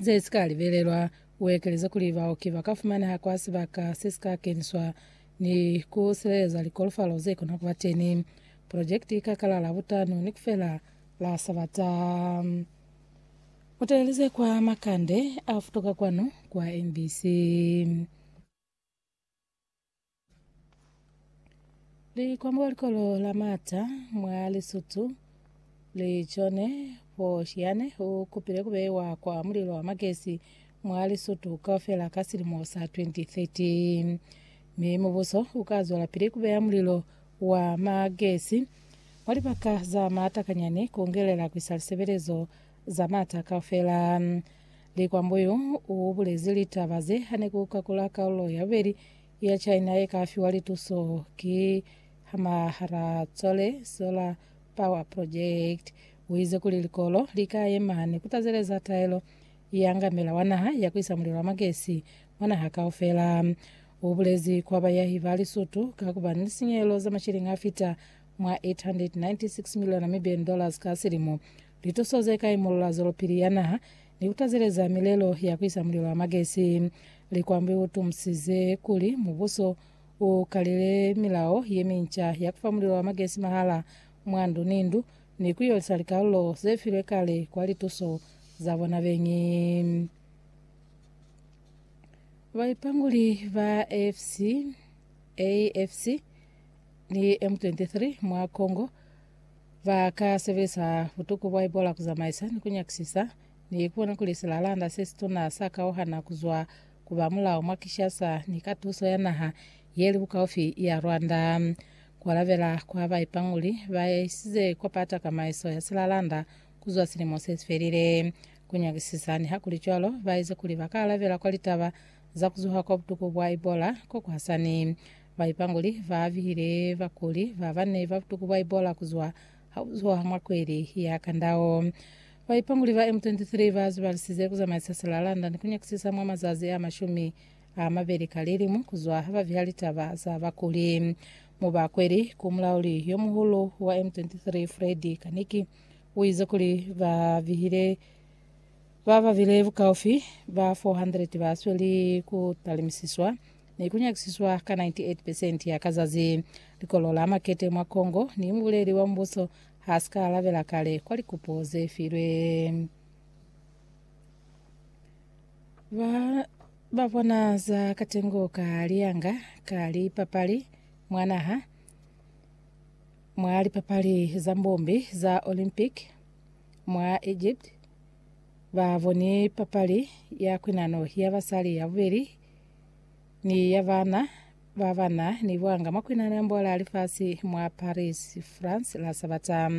ze si ka libelelwa. U ekeleze kuli, Baoki ba ka fumaneha kwa sibaka se si ka keniswa ni ku sileleza likolofalo ze kona ku ba teni. Projekiti i ka kala Labutanu ni ku fela la Sabata. Mu taleleze kwa makande a futuka kwanu kwa mbc. Likombo likolo la Mata mwa Lesotho li chone fo Shiane u kupile ku beiwa kwa mulilo wa magesi mwa Lesotho kaufela ka silimo sa 2013 mi mubuso u ka zwela pili ku beya mulilo wa magesi mwa libaka za maata kanyani ku ngelela ku isa lisebelezo za maata kaufela. Likombo yu u bulezi litaba ze hane ku kakula kalulo ya bubeli ya China ye ka fiwa lituso ki Hamahara Tsole Solar Power Project. U ize kuli likolo li ka yema ni ku tazeleza taelo ya ngamela wa naha ya ku isa mulilo wa magesi mwa naha kaufela. U bulezi kwa bayahi ba Lisutu ka ku ba ni lisinyehelo za mashilingi a fita mwa 896 miliyo Namibian dollars ka silimo. Lituso ze ka imolola zwelopili ya naha Ni kutazeleza milelo ya ku isa mulilo wa magesi. Likwambi u tumusize kuli mubuso u kalele milao ye minca ya ku fa mulilo wa magesi mahala mwa ndu ni ndu ni ku yolisa likalulo ze filwe kale kwa lituso za bona beñi. Baipanguli ba AFC ni M23 mwa Congo Ba ka sebelisa butuku bwa Ebola ku zamaisa ni ku nyakisisa ni ku bona kuli silalanda se situna sa kauhana ku zwa ku ba mulao mwa Kinshasa ni ka tuso ya naha ye li bukaufi ya Rwanda. Ku alabela kwa ba ipanguli ba isize kwa pa takamaiso ya silalanda ku zwa silimo se si felile. Ku nyakisisa nihakulicwalo ba ize kuli ba ka alabela kwa litaba za ku zuha kwa butuku bwa Ebola ko ku hasani. Baipanguli ba bile bakuli ba ba ne ba tuku Baibola ku zwa hauzwa mwa kweli ya kandao. Baipanguli ba M23 ba zibalisize ku zamaisa sila London ku nyakisisa mwa mazazi a mashumi a mabeli ka lilimu ku zwa ha ba viha litaba za bakuli. Mu ba kweli ku mulauli yo muhulu wa M23 Freddy Kaniki u ize kuli ba vihile ba ba bile bukaufi ba 400 ba sweli ku talimisiswa ne ku nyakisiswa ka 98 percent ya ka zazi. Likolo la makete mwa Congo ni mubuleli wa mubuso ha si ka alabela kale kwa likupo ze filwe. Ba ba bona za katengo ka liyanga ka lipapali mwa naha mwa lipapali za mbombi za Olympic mwa Egypt ba boni papali ya kwinano ya basali ya bubeli ni ya bana ba bana ni buanga mwa kwinanambo la lifasi mwa Paris, France la Sabata.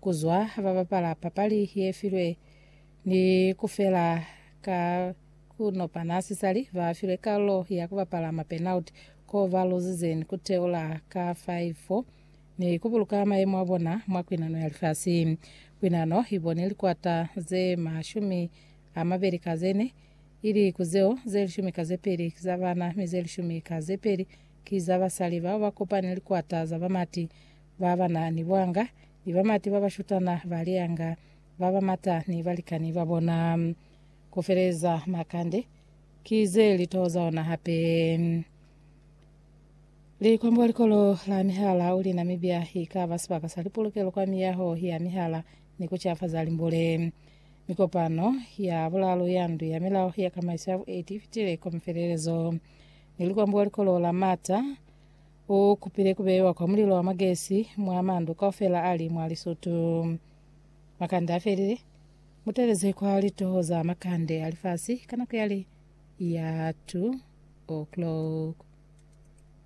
Kuzwa ha ba bapala papali ye filwe ni kufela ka kunopana sisali ba filwe kalulo ya kubapala ma penalty ko ba luzize ni kuteula ka 5-4 ni kubuluka mayemo abona mwa kwinano ya lifasi. Kwinano ibone likwata ze mashumi a mabeli ka ze ne i li ku zeo, ze lishumi ka ze peli ki za bana, mi ze lishumi ka ze peli ki za basali bao ba kopani likwata za bamati ba ba na ni buanga, ni bamati ba ba shutana ba lianga ba ba mata ni balikani ba bona. Ku feleza makande ki ze li toho za ona hape. Likwambo wa Likolo la Mihala u li, Namibia i ka ba sibaka sa lipulukelo kwa miyaho ya mihala ni ku cafaza limbule. mi kopano ya bulalu ya ndu ya milao ya kamaiso ya bueti ifitile kwa mifelelezo. Ni lukwambo wa likolo la Mata u kupile kubeiwa kwa mulilo wa magesi mwa mandu kaufela ali mwa Lisutu. Makande afelile, muteleze kwa litoho za makande a lifasi ka nako yale ya 2 o'clock.